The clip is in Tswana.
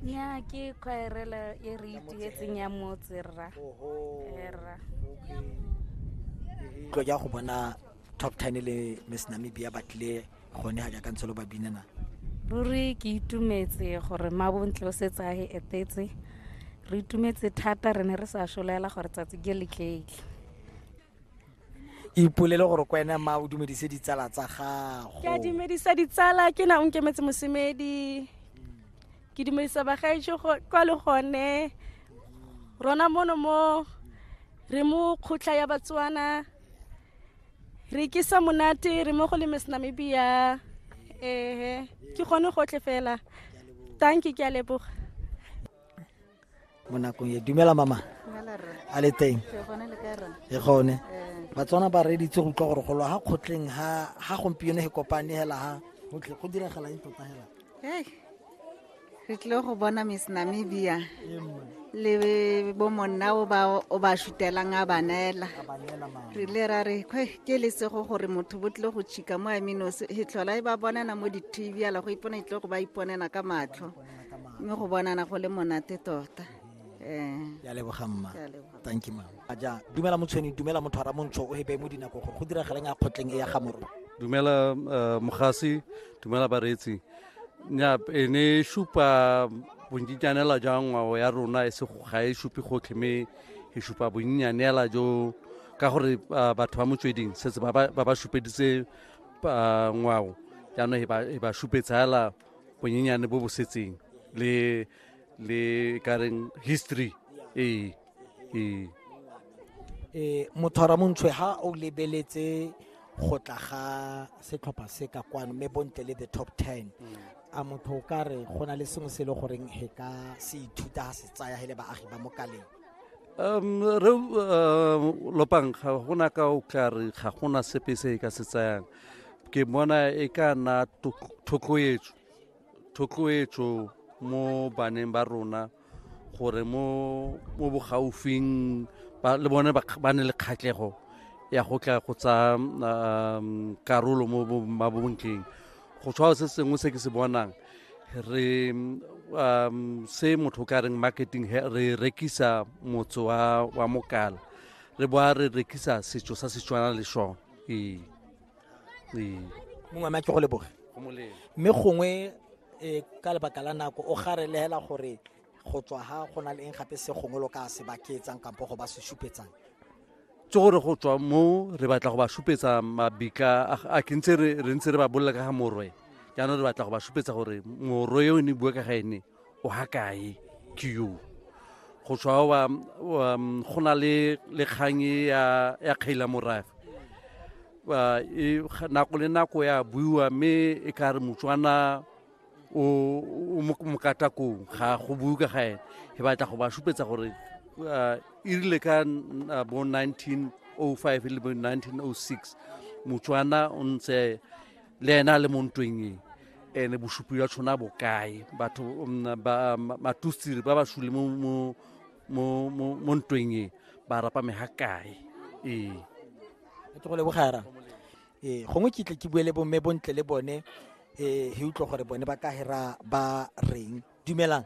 nya ke khwaerela e re itietseng ya motse rra rra tlo ja go bona top 10 le miss namibia ba tlile gone ga jaaka ntse lo ba binana ruri ke itumetse gore mabontle o setse a e etetse re itumetse thata re ne re sa solela gore tsatsi ke le tleile ipolele gore ko ene ma o dumedise ditsala tsa gago ke a dumedisa ditsala ke na o nkemetse mosemedi ke dumedisa bagaetso kwa le gone rona mono mo re mo kgotla ya batswana re kisa monate re mo go le miss namibia ehe ke gone gotlhe fela tanki ke a leboga mo nakong e dumela mama a le teng e gone batswana ba reditse go utlwa gore go lwa ga kgotleng ga gompieno e kopane hela ga gotlhe go diragala eng tota hela re tlile go bona miss namibia le bo monna o ba o ba shutelang a banela re le ra re kwe ke le sego gore motho bo tlile go chika mo amino se tlhola e ba bonana mo di-tv ala go ipona e tlile go ba iponela ka matlho mme go bonana go le monate tota um ya leboga mma thank you mama ja dumela motshweni dumela motho ara montsho o hebe mo dinako gore go diragaleng a kgotleng e ya ga moro dumela uh, mogasi dumela bareetsi nya e ne e supa bonnyitsanela jwa ngwao ya rona e se ga e supe gotlhe mme e supa bonnyanela jo ka gore uh, batho ba motsweding setse ba ba supeditse uh, ngwao jaanong e ba supetsa fela bonyenyane bo bo setseng le le kareng history ee ee eh mothora montshwe ha o lebeletse go tla ga setlhopha se ka kwano mme bontle le the top 10 a motho o ka re go na le sengwe se e le goreng he ka se ithuta ha se tsaya he le baagi ba mo kaleng um re um lopang ga gona ka o tla re ga gona sepe se e ka se tsayang ke bona e ka nna thotloetso thotloetso mo baneng ba rona gore mo mo bogaufing le bone ba ne le kgatlhego ya go tla go tsa um, karolo mo mabontleng go tshwao se sengwe se ke se bonang re um, se motho ka reng marketing re rekisa motse wa mokala re boa re rekisa setso sa setswana le sone ee ee mongwe a ke go leboge mme gongwe um ka lebaka la nako o garelegela gore go tswa ga go na le eng gape se gongwe lo ka se baketsang kampo go ba se supetsang tse gore go tswa mo re batla go ba supetsa mabika a ke ntse re ntse re ba bolela ka ga morwe jaanong re batla go ba supetsa gore morwe yo ne bua ka ga ene o ha kae ke yo go tswa wa um, go na le le kgang e ya ya kgaila morafe ba e nako le nako ya buiwa mme e ka re motswana o o mo- mokatakong ga go bue ka ga ene e batla go ba supetsa gore uh, e rile ka n- uh, bo 1905 le bo 1906 motswana o ntse le ena a le mo ntweng e ene bosupi jwa tshona bokae batho mm, ba- ma- matustiri ba ba sule mo- mo- mo mo- mo ntweng e ba rapa me ga kae ee ke go lebogara ee gongwe ke tle ke bue le bomme bontle le bone ee he utlwa gore bone ba ka hera ba reng dumelang